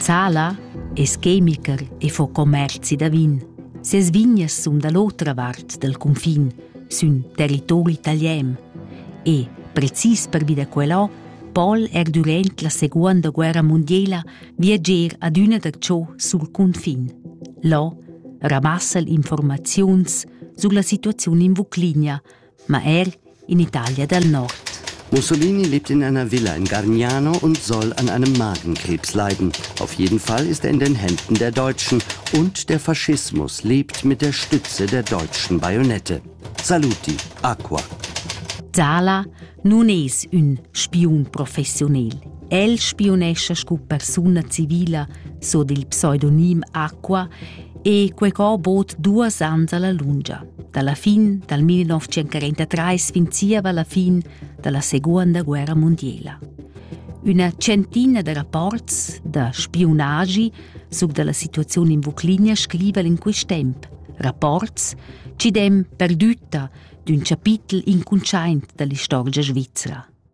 Zala es chemical e fo commerzi da vin. Ses vignas sun da l'otra vart dal cunfin, sün territori italian. E, precis pervi da quello, Paul er durant la seconda guerra mondiala viager adüna da ciò sul cunfin. Là ramassa'l informaziuns sulla situaziun in Vuclinia, ma er in Italia dal nord. Mussolini lebt in einer Villa in Gargnano und soll an einem Magenkrebs leiden. Auf jeden Fall ist er in den Händen der Deutschen und der Faschismus lebt mit der Stütze der deutschen Bajonette. Saluti, Aqua. Dala nun es ün spiun professionel. El spionescha scu persuna civila, so dil pseudonim Aqua, e quecò bod duas ans alla lungia. Dalla fin dal 1943 fin zieva la fin dalla Seguonda guerra mundiela. Üna centina da rapports da spiunagi suc dalla situaziun in Vuclinia scriva in quist temp. Rapports ci dem perdütta d'ün chapitel incuntschaint dall'istorgia svizra.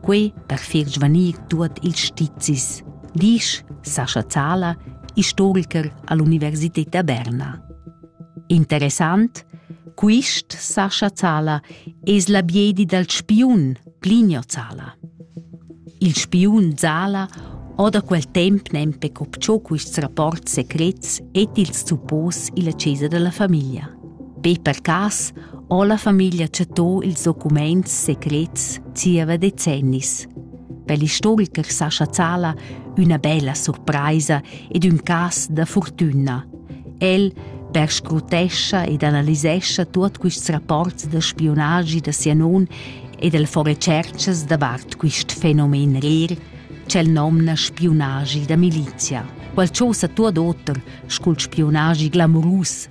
quei per far svanir tuot ils stizis, disch Sascha Zala, istoriker all'Universität da Berna. Interessant, quist Sascha Zala es la biedi dal spiun Plinio Zala. Il spiun Zala ho da quel temp nempe copciò quists rapports secrets et ils suppos illa chesa della famiglia. Be per cas ho la famiglia chattò ils documaints secrets zieva decennis. Per l'istoricher Sascha Zala üna bella surpraisa ed ün cas da fortüna. El perscrutescha ed analisescha tuot quists rapports da spiunagi da sia non ed el fa retscherchas davart quist fenomen rer ch'el nomna spiunagi da milizia. Quel chosa tuot oter scu'l spiunagi glamurus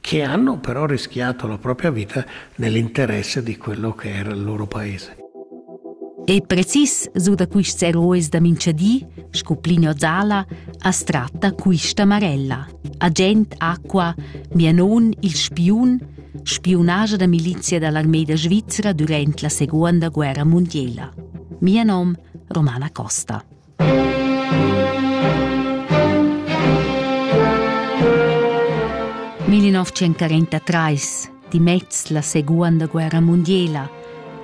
che hanno però rischiato la propria vita nell'interesse di quello che era il loro paese. Ei precis su da quists herois da minchadi, sco Plinio Zala, as tratta quista Marella, agent acqua, mia non il spiun, spiunaja da milizia dall'armeida svizzera durant la seconda guerra mondiela. Mia nom Romana Costa. 1943 dimez la seguonda guerra mundiela.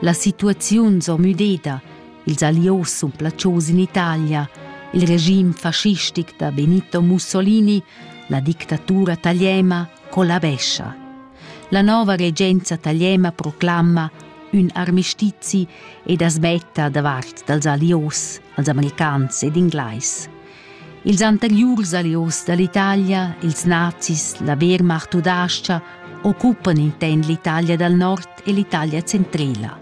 La situaziun s'ho müdeda, ils allios sun placios in Italia, il regim fascistic da Benito Mussolini, la dictatura taliena collabescha. La nova regenza tagliema proclama ün armistizi ed as metta davart dals alios, als americans ed inglais. Ils anteriurs alios dall'Italia, ils nazis, la Wehrmacht udascha, occupan inten l'Italia dal nord e l'Italia centrela.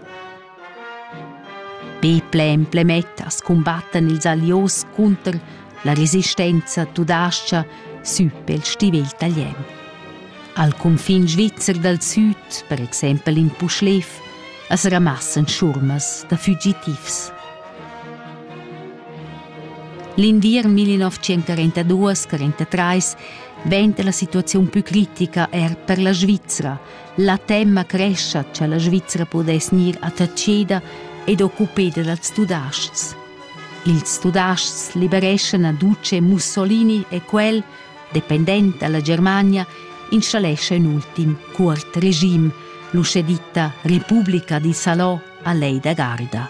Peple e Emplemetta scumbattan ils Allios cunter la resistenza tudascha sü pel stivel talian. Al cunfin svizzer dal süd, per exempel in Puschlev, as ramassan schurmas da fugitivs. L'inviern 1942-43 venta la situaziun più critica er per la Svizzera, La temma crescha cha la Svizra pudess gnir attacheda ed occupeda dals tudaschs. Ils tudaschs libereschan Aduce Mussolini e quel, dependent dalla Germania, installescha ün ultim cuort regim, l'uschè ditta Repubblica di Salò a Lei da Garda.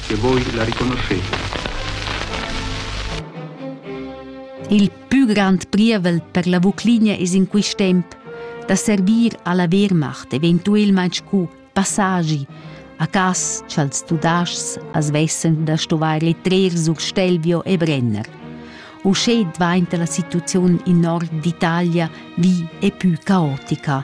che voi la riconoscheta. Il pü grand prievel per la Vuclinia es in quist temp da servir alla Wehrmacht eventuelmaing scu passagi a cas cha'ls Tudaschs as vessen da stuvair trer sur Stelvio e Brenner. Uschè dvainta la situaziun in nord d'Italia vi e pü caotica,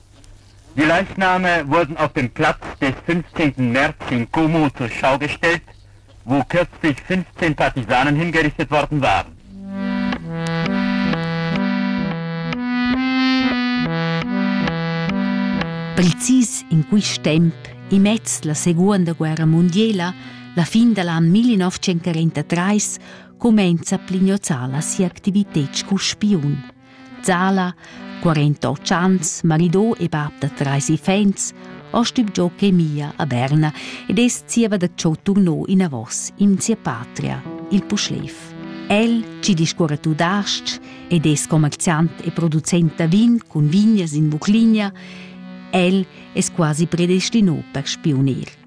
Die Leitnahme wurden auf dem Platz des 15. März in Como zur Schau gestellt, wo kürzlich 15 Partisanen hingerichtet worden waren. Precis in quist temp, immez la Seguonda guerra mondiela, la fin dell an 1943, comenza Plignozzala sia activited scu spiun. Zala, quarenta ans, marido e bab da trais iffaints, ho stübgiò chemia a Berna ed es zieva da cho turno inavos in sia patria, il Puschlev. El chi discuorra tudas-ch ed es commerziant e producent da vin cun vignas in Vucligna, el es quasi predestino per spiunir.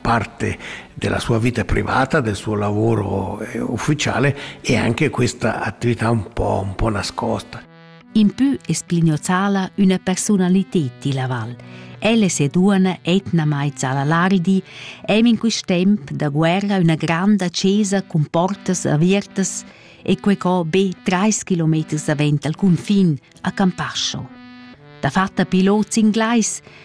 parte della sua vita privata, del suo lavoro eh, ufficiale e anche questa attività un po', un po nascosta. In più esplignozala una personalità di Laval. Elle se duana etnamai Zalalardi, em in quist temp da guerra una granda cesa cun portas avertas e quei co be trais kilometers davent al confin a Campascio. Da fatta pilot inglais,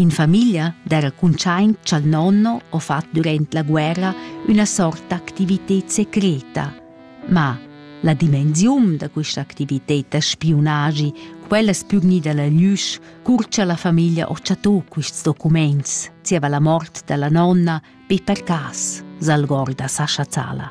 In famiglia d'era cuntschaint cha'l nonno ho fat durant la guerra üna sort d'activited secreta. Ma la dimensiun da quista activited da spiunagi, quella es pü gnida la glüsch, cur cha la famiglia ho chattò quists documents, zieva la mort da la nonna, be per cas, s'algorda Sascha Zala.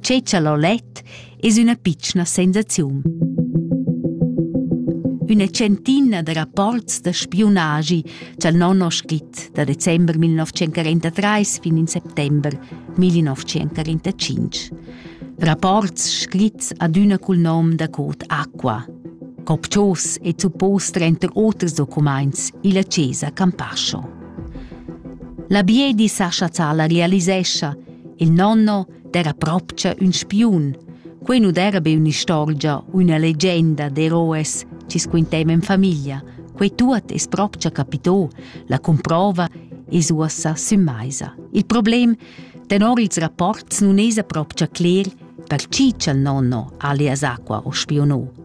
Tgei tschalolet es üna pitschna sensaziun. Üna centina da rapports da spiunagi cha'l non ho scrit da december 1943 fin in settember 1945. Rapports scrits adüna cul nom da cod Aqua. Copchos e suppos trenter oters documaints illa Chiesa Campascio. La Biedi Sascha Zala realisescha Il nonno d'era propcha ün spiun. Quei nu d'era be ün'istorgia u üna legenda d'eroes chi squinteiva in famiglia. Quei tuot es propcha capitò, la comprova es uossa sümmaisa. Il problem tenor ils rapports nun esa propcha cler per chi cha'l nonno alias Aqua o spionò.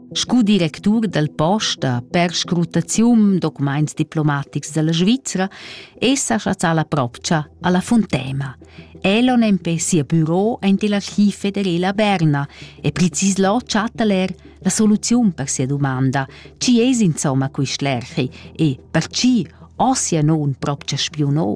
Scu directur dal posta per scrutaziun documents diplomatics dalla Svizra è sa chazzà la propcha alla Fontena. Elon empè sia büro aint l'archiv federela a Berna e precis là chatta er la soluziun per sia domanda, chi es insomma quist lerchi e per chi ossia non propcha spiunò.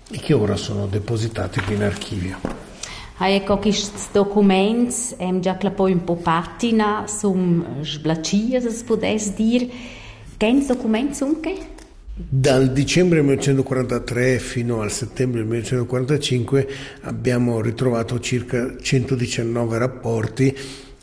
e che ora sono depositati qui in archivio. Ha eco quists documaints em già clappo ün po patina, sun sblachias as pudess dir. Quens documents sun che? Dal dicembre 1943 fino al settembre 1945 abbiamo ritrovato circa 119 rapporti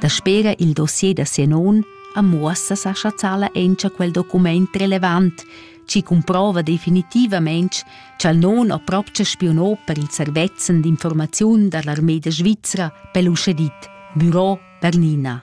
Daspera il dossier da sia non am muossa sa chazzala encha quel document relevant, chi cumprova definitivamaing cha'l non ho propcha spionò per il servezzan d'informaziun da l'armeda svizra pel uschè dit Büro Bernina.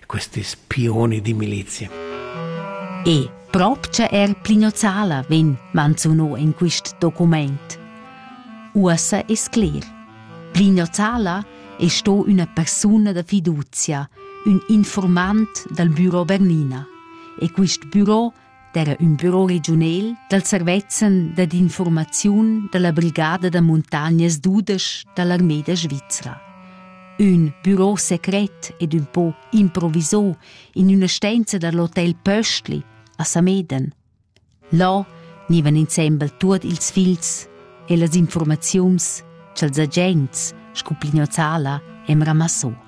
questis pioni di militia. E propcha er plinozzala vegn manzuno in quist document. Uossa es cler. Plinozzala è sto una persona da fiducia, un informant dal Büro Bernina. E quist büro d'era ün büro regiunel dal servezzan dad infurmaziun dalla brigada da muntagnas dudesch dall'armeda svizra. Ün büro secret ed ün po improvisò in üna stenza dall'hotel Pöstli a Sameden. Là gnivan insembel tuot ils figls e las informaziuns cha'ls agents scu Plignozzala e'm ramassò.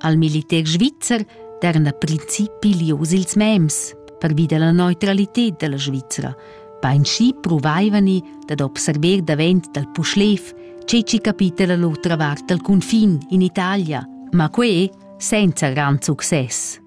Al militer svizzer daran a principi lius ils mems pervi della neutralität della Svizzera. Beinschi provaivani dad observer davent dal Puschlev ce ci capita la l'otra vart dal confin in Italia, ma que senza gran success.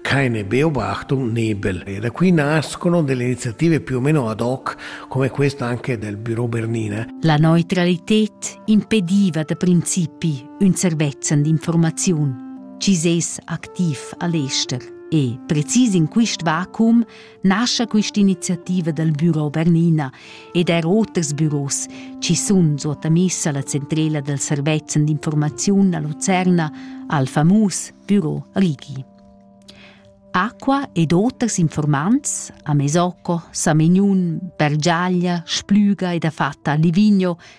Quai n'è Beobachtung nebel e da qui nascono delle iniziative più o meno ad hoc, come questa anche del Büro Bernina. La neutralität impediva da principi un servezzan d'informaziun. Ci ses activ a l'ester e precis in quist vacuum nascha quist'iniziativa dal büro Bernina ed er oters büros chi sun suottamissa alla centrela dal servezzan d'informaziun a Lucerna al famus büro Righi. Acqua ed oters informants a Mesocco, Samignun, Bergiaglia, Splüga ed a Fatta a Livigno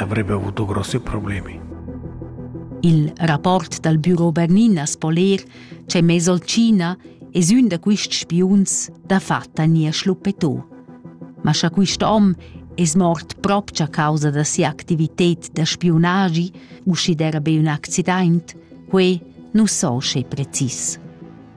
avrebbe avuto grossi problemi. Il rapport dal Büro Berninas po ler che Mesolcina es ün da quists spiuns da fatta nia schluppetò. Ma scha quist hom es mort propch a causa da sia activited da spiunagi, uschi d'era be ün accident, quei nu so sche precis.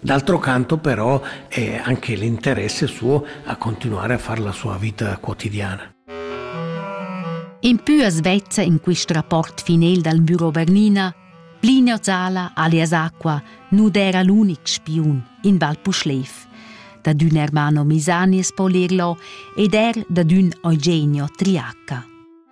D'altro canto però è anche l'interesse suo a continuare a fare la sua vita quotidiana. In più a Svezia, in questo rapporto finel dal Büro Bernina, Plinio Zala, alias Acqua, nu era l'unic spiun in Val Puschlev. Da d'ün Ermano Misani es po lerlo ed er da d'ün Eugenio Triacca.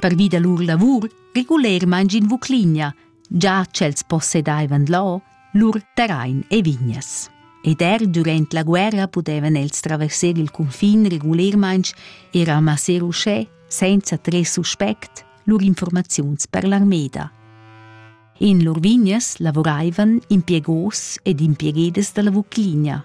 Pervi da lur lavur regulermain in Vucligna, già ch'els possedaivan là lur terrain e vignas. Ed er durant la guerra pudevan els traversar il cunfin regulermain e ramassar uschè, senza tres suspect, lur informaziuns per l'armeda. In lur vignas lavuraivan impiegos ed impiegedas dalla Vucligna,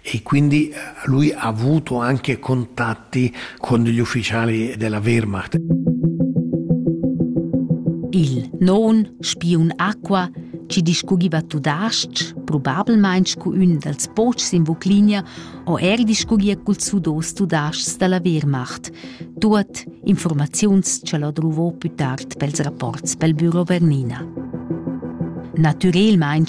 E quindi lui ha avuto anche contatti con gli ufficiali della Wehrmacht. Il non spiun acqua ci discugiva tudasc, probabilmein scu ün dals pochs in Vuclinia, o er discugia cul sudos tudascs dalla Wehrmacht, tuot informaziuns ce l'ho druvò più tard pels rapports pel Büro Bernina. Natürelmaing